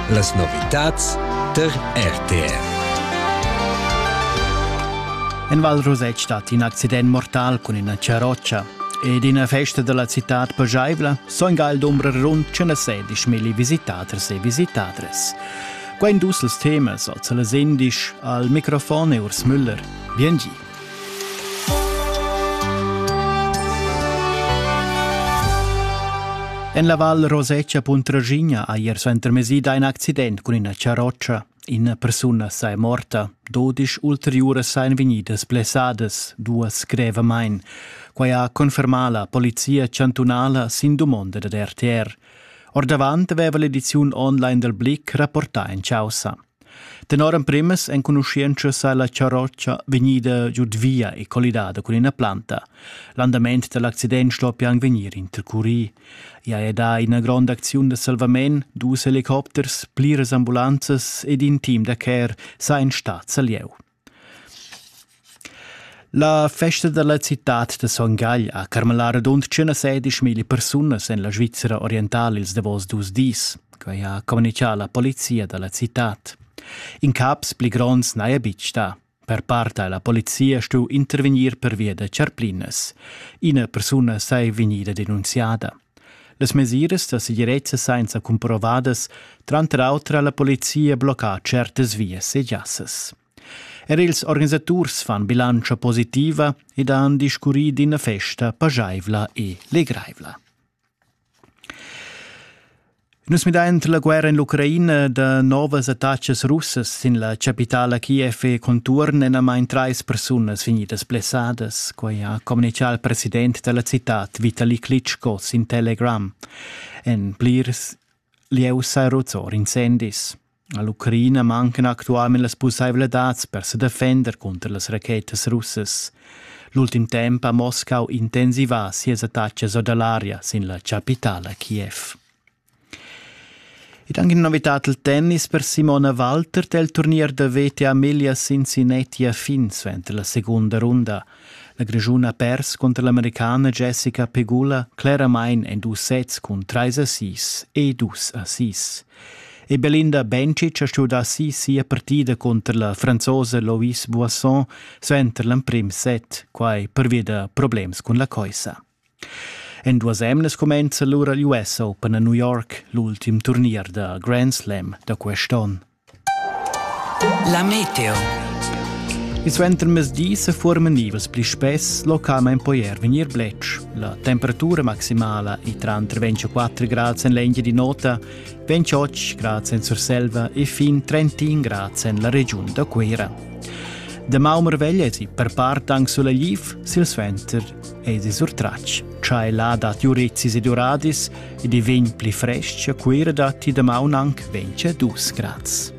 Las novitads tar RTR. En Val Rosett stat in accident mortal cun ina charrotscha. Ed ina festa della citad pageivla soinga il dumbrer rund 116 milli visitaders e visitadres. Quain dus els temas als les indisch al microfon e Urs Müller. Bien gi. En la Val Rosetscha Puntraschigna ha ier suentermesì dà in accident cun ina charrotscha. Ina persuna sa è morta. Dodisch ulteriuras sajan vegnidas blessadas, duas grevamain. Quai ha confermà la polizia chantunala sin dumonda dad RTR. Ordavant aveva l'ediziun online dal Blick rapportà en chaussa. Tenor emprimas enconuschientscha sa la charrotscha vegnida giud via e collidada cun ina planta. L'andament dall'accident sto pian vegnir intercurì. I ha dà ina gronda acziun da salvament, dus helicopters, pliras ambulanzas ed in team da care sa ein stads a lieu. La festa dalla citad da Son Gagl ha carmalà radund 116 mila persunas en la Svizra orientala ils davos dus dis, quai ha communitgà la polizia da la citad. Incaps pli gronds n'haja betg stà. Per part ha la polizia stuì intervegnir pervia da charplinas. Ina persuna saja vegnida denunziada. Las mesiras da segirezza sainza cumprovadas tranter auter ha la polizia bloccà tschertas vias e giassas. Er ils organisaturs fan bilantscha positiva ed han discurrì d'ina festa pajaivla e legraivla. Nus midain la guerra en l'Ucraina da novas attachas russas sin la chapitala Kiev e contuorn enamain trais persunas vegnidas blessadas, quai ha communitgà il president da la citad Vitali Klitschko sin Telegram. En plirs lieus sa ruzzor incendis. A l'Ucraina mancan actualmain las pussaivladads per sa defender cunter las rachetas russas. L'ultim temp ha Moscau intensivà sias attacas or da l'aria sin la chapitala Kiev. Ed anche una novità al tennis per Simona Walter del turnier da VTA Miglia Cincinnati a fin suenter la seconda runda. La Grischun ha pers contro l'americana Jessica Pegula claramente en dus sets cun 3 assist e 2 assist. E Belinda Bencic ha studà si sia partida cunter la franzosa Loïs Boisson suenter l'emprim set, quai pervia da problems cun la coissa. En duas emnas cumenza lura l'US Open a New York, l'ultim turnier da Grand Slam da quest'onn. La meteo. Il suentermezdi sa forman nivas pli spess, localmain poi er vegnir bletsch. La temperatura maximala è tranter 24 grads en l'Engia di nota, 28 grads en Surselva e fin 31 grads en la regiun da Cuira. De Maumerveglia es i per part anche sulla Liv, sil Sventer es i sur Tracc. C'hai là dat Jurezis ed Uradis ed i vegn pli fresc a Cuira dat i da maun anche 22 grads.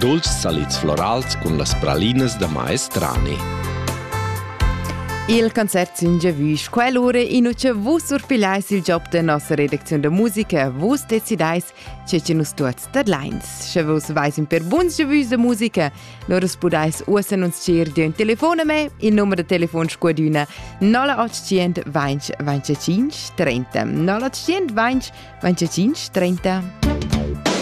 Dulcis salids florals cun las pralinas da maestrani. Il concert sin giavüsch. Quell'ura in uce vus surpigliais il job de nossa redacziun de musica, vus decidais ce che nus tuots tadlains. Sche vus vais in per buns giavüsch de musica, lor us pudais uoss annunzier di un telefon a me, il numero de telefon squadüna 0800 20 25 30 0800 20 25 30.